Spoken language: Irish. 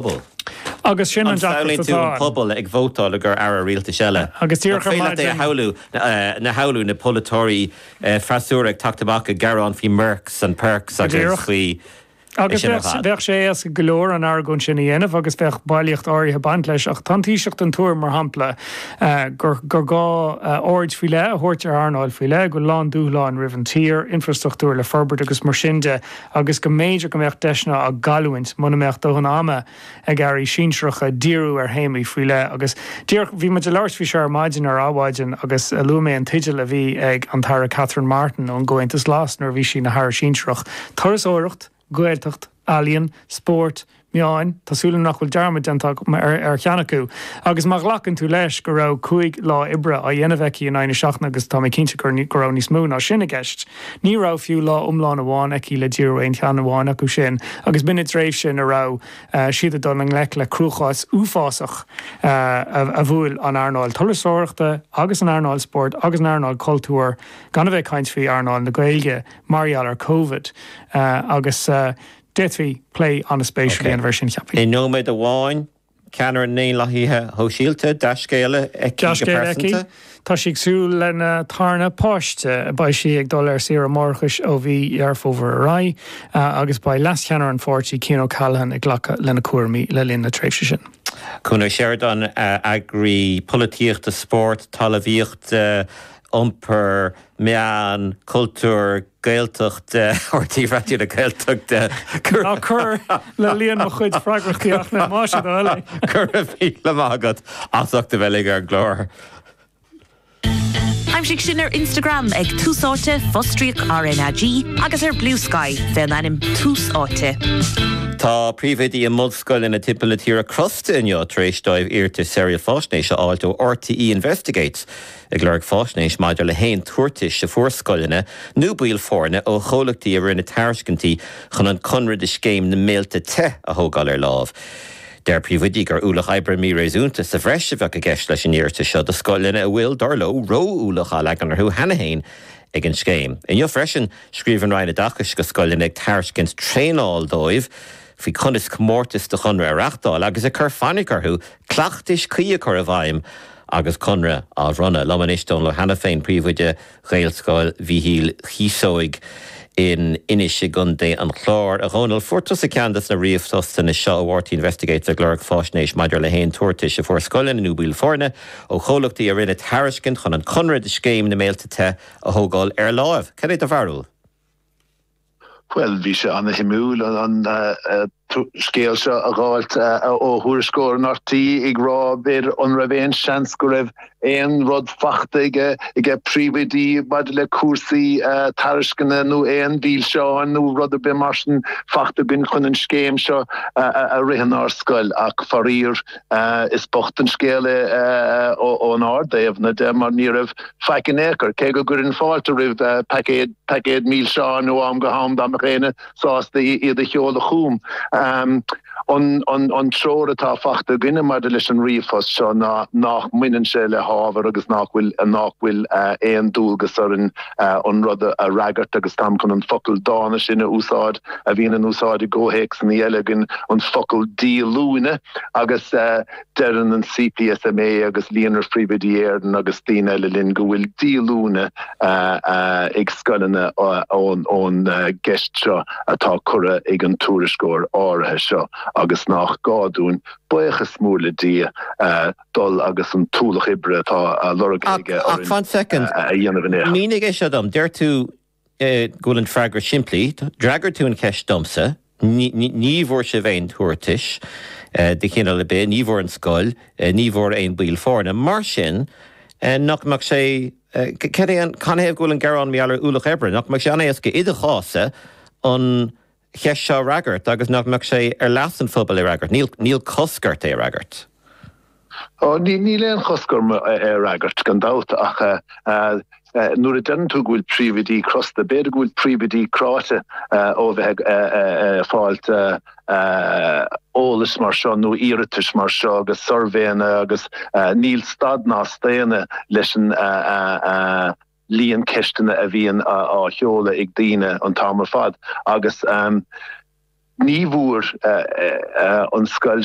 bpobal. Agus sin an deacracht atá ann. An samhlaíonn tú an pobal ag vótáil le haghaidh aire rialtais eile? Agus díreach ar maidin. Nach féidir leat é a shamhlú, na polaiteoirí freasúra ag teacht amach ag gearán faoi Mercs and Perks agus faoi sin ar fad. Agus bheadh sé éasca go leor an argóint sin a dhéanamh agus bheadh bailíocht áirithe ag baint leis. Ach tá an Taoiseach den tuairim, mar shampla, gur gá aird faoi leith a thabhairt ar earnáil faoi leith, go bhfuil a lán dúshláin roimh an tír, infreastruchtúr le forbairt agus mar sin de. agus go mb'fhéidir go mbeadh deiseanna á gcailliúint muna mbeadh dóthain ama ag airí sinsearacha díriú ar théamaí faoi leith. Agus díreach, bhí muid ag labhairt faoi seo ar maidin, ar Adhmhaidin, agus luaigh mé an teideal a bhí ag an Aire Catherine Martin ón gComhaontas Glas nuair a bhí sí ina haire sinsearach, Turasóireacht, Gaeltacht, Ealaíon, Spórt, meáin, tá súil agam nach bhfuil dearmad déanta agam ar cheann acu, agus má ghlacann tú leis go raibh cúig lá oibre á dhéanamh aici in aghaidh na seachtaine, agus tá mé cinnte go raibh níos mó ná sin i gceist, ní raibh fiú lá iomlán amháin aici le díriú ar aon cheann amháin acu sin, agus b'in i dtréimhse ina raibh siad ag dul i ngleic le cruachás uafásach a bhuail an earnáil turasóireachta agus an earnáil spóirt agus an earnáil cultúir, gan a bheith ag caint faoi earnáil na Gaeilge, mar gheall ar Covid. Agus. D'fhéadfaí plé an-spéisiúil a dhéanamh air sin, cheapfainn. I nóiméad amháin, ceannaire na nDaonlathaithe Sóisialta, dea-scéala aici go pearsanta. Dea-scéala aici, tá sí ag súil lena tarna páiste. Beidh sí ag dul ar saoire máithreachais ó mhí Dheireadh Fómhair ar aghaidh agus beidh leascheannaire an pháirtí, Cian O'Callaghan, ag glacadh lena cúraimí le linn na tréimhse sin. Cuan Ó Seireadáin, eagraí polaitíochta, spóirt, talamhaíochta, iompair, meán, cultúir, Gaeltachta RTÉ Raidió na Gaeltachta. Cur. Ná cuir le líon mo chuid freagrachtaí ach le Maise, do thoil é. Go raibh míle maith agat as ucht a bheith linn ar an gclár. Aimsigh sinn ar Instagram ag Tús Áite, fostríoc RnaG, agus ar Blue Sky faoin ainm Tús Áite. Tá príomhoidí i mbunscoileanna timpeall na tíre crosta inniu tar éis dóibh iarratais Saoráil Faisnéise a fháilt ó RTÉ Investigates. ag lorg faisnéis maidir le haon tabhartais a fuair scoileanna nó baill foirne ó chomhlachtaí a rinne tairiscintí chun an conradh do scéim na mBéilte Te a thógáil ar láimh. Deir príomhoidí gur ualach oibre míréasúnta sa bhreis a bheadh i gceist leis an iarratas seo do scoileanna a bhfuil, dar leo, ró-ualach á leagan orthu cheana féin ag an scéim. Inniu freisin, scríobh an Roinn Oideachais chuig scoileanna ag tairiscint traenáil dóibh faoi conas comórtais do chonradh a reáchtáil agus ag cur fainic orthu cleachtais cuí a chur i bhfeidhm agus conradh á bhronnadh. Liom anois Dónall Ó hAiniféin, príomhoide Ghaelscoil Mhíchíl Chíosóig in Inis i gContae an Chláir. A Dhónaill, fuair tusa ceann des na ríomhphostanna seo ó RTÉ Investigates ag lorg faisnéis maidir le haon tabhartais a fuair scoileanna nó baill foirne ó chomhlachtaí a rinne tairiscint chun an conradh do Scéim na mBéilte Te a thógáil ar láimh. Cad é do bharúil? Bhuel, bhí sé ana-shuimiúil an scéal seo a dh'fháilt ó thuairisceoir in RTÉ ag rá b'fhéidir an raibh aon seans go raibh aon rud fachta aige príomhoidí maidir le cúrsaí tairisceana nó aon mhílseáin nó rud ar bith mar sin fachta againn chun an scéim seo a rith inár scoil ach faraor is bocht an scéal é ónár dtaobhna de mar ní raibh faic in aon chor, cé go gcuirfinn fáilte roimh paicéad milseán ó am go ham dá mbeadh aoinne sásta iad a sheoladh chugam. An treoir atá fachta againne maidir leis an ríomhphost seo ná nach mbaineann sé le hábhar agus nach bhfuil aon dualgas orainn an rud a fhreagairt agus táim chun an focal dána sin a úsáid a bhíonn in úsáid i gcomhthéacsanna eile againn, an focal díolúine, agus. Deireann an CPSMA agus Líonra Phríomhoidí Éireann agus daoine eile linn go bhfuil díolúine ag scoileanna ón gceist seo atá curtha ag an tuairisceoir áirithe seo agus nách gá dúinn, baochas mór le Dia, dul agus an t-ualach oibre atá á lorg aige orainn a dhéanamh in aon chor. Ach fan soicind. Mínigh é seo dom. Deir tú go bhfuil an freagra simplí, d'fhreagair tú an cheist domsa, ní bhfuair sibh aon tabhartais de chineál ar bith, ní bhfuair an scoil, ní bhfuair aon baill foirne. Mar sin, nach mbeadh sé, canathaobh go bhfuil an gearán maidir le ualach oibre, nach mbeadh sé an-éasca i do chás-sa an cheist seo a fhreagairt agus nach mbeadh sé ar leas an phobail é a fhreagairt. Níl cosc ort é a fhreagairt. Ó, níl aon chosc orm é a fhreagairt, gan dabht, ach nuair a deireann tú go bhfuil príomhoidí crosta, b'fhéidir go bhfuil príomhoidí cráite ó a bheith ag fáilt eolas mar seo nó iarratais mar seo agus suirbhéanna agus níl stad ná staonadh leis an líon ceisteanna a bhíonn á sheoladh ag daoine an t-am ar fad agus ní bhfuair an scoil